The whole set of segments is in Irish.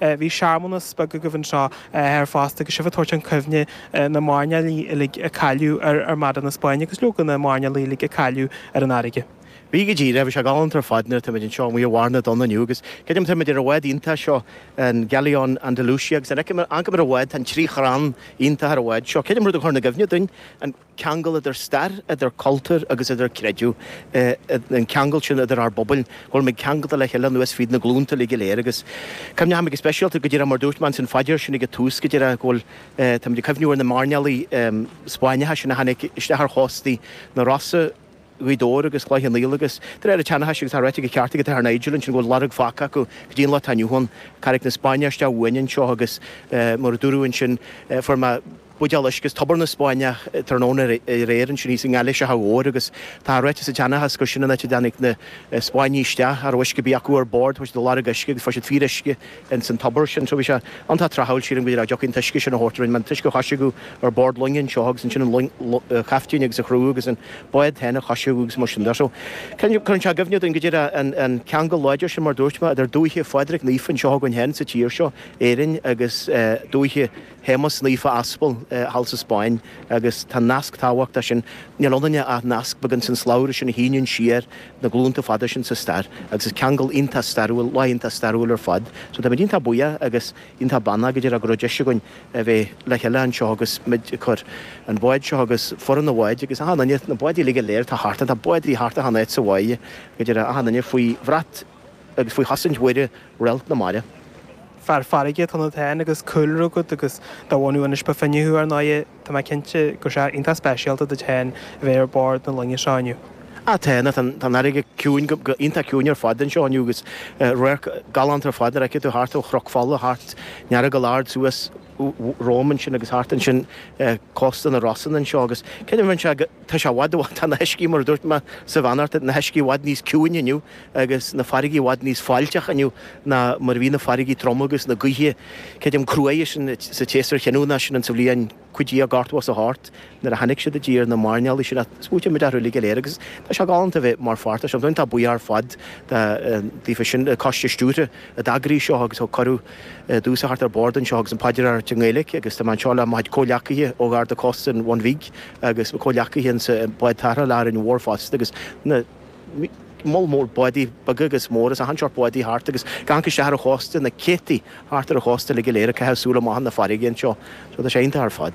Bhí searmanas beag agaibh anseo ar fosta agus sibh ag tabhairt chun cuimhne na mairnéalaigh uilig a cailleadh ar Armada na Spáinne agus leoga na mairnéalaigh uilig a cailleadh ar an fharraige. Bhí go díreach. Bhí sé galánta ar fad nuair a táimid anseo amuigh i mbarr na dtonn inniu agus creidim táimid ar an bhád iontach seo, an Galeon Andalucia agus an fheicimid, fhanfaimid ar an bhád, tá trí chrann iontacha ar an bhád seo. Creidim rud a chur i gcuimhne dúinn, an. ceangal idir stair, idir cultúr agus idir creideamh, an ceangal sin idir ár bpobail, go bhfuil muid ceangailte le chéile anuas fríd na glúnta uilig go léir agus chuimhnigh muid go speisialta, go díreach mar a dúirt mé ins an phaidir sin ag an tús, go díreach go bhfuil, tá muid ag cuimhniú ar na mairnéalaigh Spáinneacha sin a tháinig isteach ar chóstaí na Rosann, Ghaoth Dobhair agus Chloich Cheann Fhaola agus de réir an tseanchais, agus tá ráite go ceart ag an Athair Nigel ansin, go bhfuil lorg fágtha acu go dtí an lá atá inniu ann, Carraig na Spáinneach isteach uainn anseo agus mar a dúradh ansin, fuair mé. buidéal uisce as tobar na Spáinneach tráthnóna aréir ansin thíos i nGailís Átha Mhóir agus tá ráite sa tseanchas gur sin an áit a dtáinig na Spáinnigh isteach a raibh uisce de dhíth orthu ar bord, chuaigh siad a lorg uisce agus fuair siad fíoruisce ins an tobar sin. So bhí sé iontach tráthúil sa dóigh a dtiocfadh an t-uisce sin a thabhairt linn mar an t-uisce a choisriceadh ar bord loinge anseo agus ansin an long, caiftín agus a chriú agus an bád féin a choisriceadh agus mar sin de. So cuireann sé i gcuimhne dúinn go díreach an ceangal láidir sin mar a dúirt mé idir dúiche Phádraig Naofa anseo againn féin sa tír seo, Éirinn, agus dúiche. Shéamuis Naofa Aspal thall sa Spáinn agus an nasc tábhachtach sin, níl ionainne ach nasc beag insan slabhra sin a shíneann siar na glúnta fada sin sa stair agus is ceangal iontach stairiúil, lá iontach stairiúil ar fad. So táimid iontach buíoch agus iontach beannaithe go díreach go raibh deis againn a bheith le chéile anseo agus muid ag cur an bháid seo agus foireann an bháid agus achan duine, na báid uilig go léir atá thart ann, tá bád thart achan áit sa bháighe go díreach, achan duine faoi bhrat. agus faoi chosaint Mhuire, réalt na mara. Fear farraige atá ionat féin agus cúlra agat agus de bhunadh Inis Bó Finne thú ar ndóigh, tá mé cinnte gur rud iontach speisialta duit féin a bheith ar bord na loinge seo inniu. Á, tá, tá an fharraige ciúin, go, go, iontach ciúin ar fad anseo inniu agus radharc galánta ar fad nuair a fheicfidh tú thart ó Chnoc Fola, thart an Earagail ard, suas romham ansin agus thart ansin cósta na Rosann anseo agus creidim bheinn ag. Tá sé i bhfad, i bhfad, tá na huiscí, mar a dúirt mé sa bheannacht, na huiscí i bhfad níos ciúine inniu agus na farraigí i bhfad níos fáiltí inniu ná mar a bhí na farraigí troma agus na gaoithe, creidim, cruaidhe sin sa tséasúr chinniúnach sin sa bhliain cúig déag ceithre scór is a hocht nuair a tháinig siad i dtír, na mairnéalaigh sin a smaointigh muid orthu uilig go léir agus tá sé galánta a bheith mar pháirt de sin. Táim an-bhuíoch ar fad de, díofa sin, coiste stiúrtha a d'eagraigh seo agus thug cuireadh. domhsa theacht ar bord anseo agus an phaidir a rá i nGaeilic agus tá mé anseo le mo chuid comhleacaithe ó Gharda Cósta an Bhun Bhig agus mo comhleacaithe insa bád tarrthála le hÁrainn Mhór fosta agus an moll mór bádaí beaga agus móra is achan seórt bádaí thart agus go díreach isteach ar an chósta na céadtaí thart ar an chósta uilig go léir ag caitheamh súil amach na farraige anseo so tá sé iontach ar fad.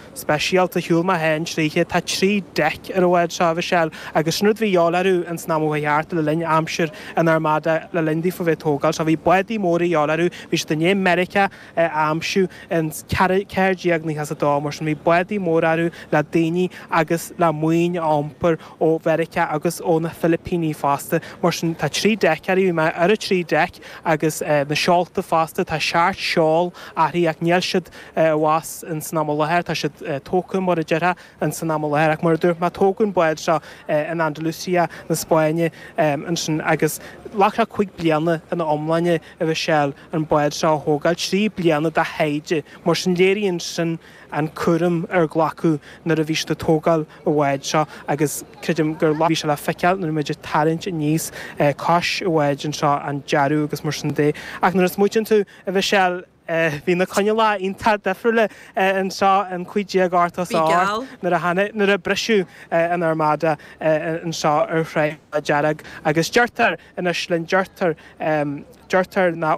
speisialta shiúil mé féin tríothu. Tá trí deic ar an bhád seo, a Mhichelle, agus sin rud a bhí a dhíobháil orthu ins an am a chuaigh thart le linn aimsir an Armada le linn daofa bheith ag tógáil seo. Bhí bádaí móra a dhíobháil orthu, bhí siad i ndiaidh Meiriceá a aimsiú in 1492 mar sin bhí bádaí móra orthu le daoine agus le maoin a iompar ó Mheiriceá agus ó na Filipíní fosta. Mar sin tá trí deic air, bhí mé ar an trí deic agus na seolta fosta, tá seacht seol uirthi ach níl siad, anuas in san am i láthair, tá siad tógtha mar a déarfá in san am i láthair, ach mar a dúirt mé tógadh an bád seo in Andalucia na Spáinne ansin agus ghlac sé cúig bliana ina iomláine, a Mhichelle, an bád seo a thógáil, trí bliana de thaighde, mar sin léiríonn sin an cúram a glacadh nuair a bhí siad ag tógáil an bháid seo agus creidim gur bhí sé le feiceáil nuair a bhí muid ag tarraingt aníos cois an bháid anseo an dearadh agus mar sin de ach nuair a smaoitíonn tú, a Mhichelle Bhí na coinníollacha iontach difriúil anseo in 1588 Bhí geall. nuair a tháinig, nuair a briseadh an Armada anseo ar Thráigh na Dearg agus deirtear anois linn, deirtear, deirtear nach.